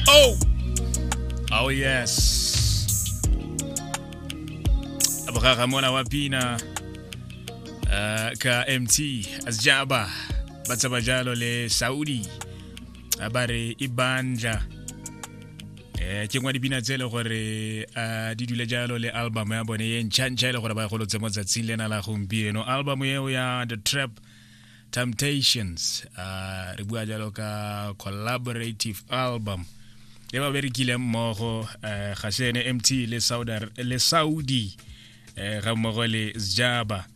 Oh! Oh yes. Abrara mwana wa pina uh, ka MT Azjaba ba tsaba jalo le Saudi a ba re e banja eh ke ngwa dipina tse e le gore a di dule jalo le album ya bone e ntšha ntšha e le gore ba e golotse mo tsatsing lena la gompieno album eo ya the trap temptations uh, re bua jalo ka collaborative album e ba berekileng mmogo uh, ga se ene mt le saudi, le saudi uh, ga mmogo le sjaba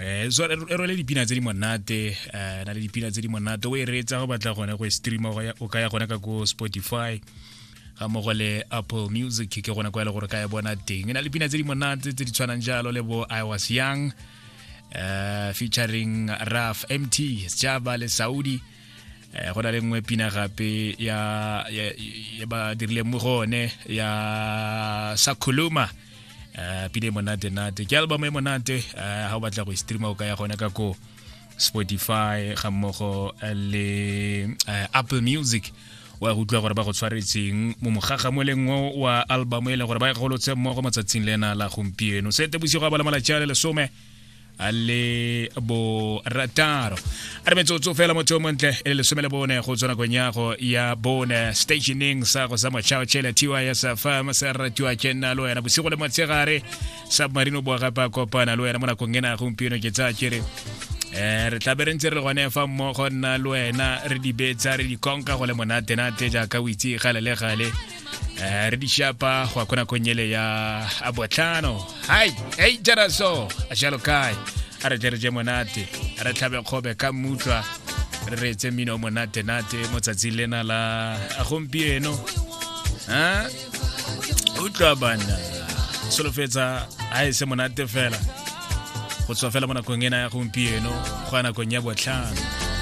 eh so e role dipina tse di monate eh na le dipina tse di monate o e reetsa go batla gone go e streama go ya o ka ya gone ka go Spotify ga mogo le Apple Music ke gone kwa e le gore ka e bona teng e na le pina tse di monate tse di tshwanang jalo le bo I was young uh, featuring raf mt sjaba le saudi eh go na le nngwe pina gape ya ya ba dirile mo gone ya sakhuluma eh pina e monate nate ke album e monate eh ha o batla go e streama o ka ya gone ka ko spotify ga mmogo eh, le eh, apple music wa go utlwa gore ba go tshwaretseng mo mogagamoleng o wa album e leng gore ba e golotse mmogo matsatsing le ena la gompieno sete bosigo a bala malatsi a le lesome a le borataro a re metsotso fela motho o montle e le lesome le bone go tswa nakong yago ya bone stationeng sa go sa motšhao tšhele tys fm se ratiwa ke nna le wena bosigo le motshegare submarino boa gape a kopana le wena mo nakong ena gompieno ke tsaya kere um re tlabe re ntse re gone fa mmogo nna le wena re di betsa re di konka go le monatenate jaaka o itse gale le gale um re di shapa go ya ko nakong ele ya a botlhano hai ei jaraso a jalo kae a re tle re je monate a re tlhabe kgobe ka mmutlwa re reetse mmino o monatenate mo tsatsing lena la gompieno a utlwa bana solofetsa a e se monate fela go tswa fela mo nakong ena ya gompieno go ya nakong ya botlhano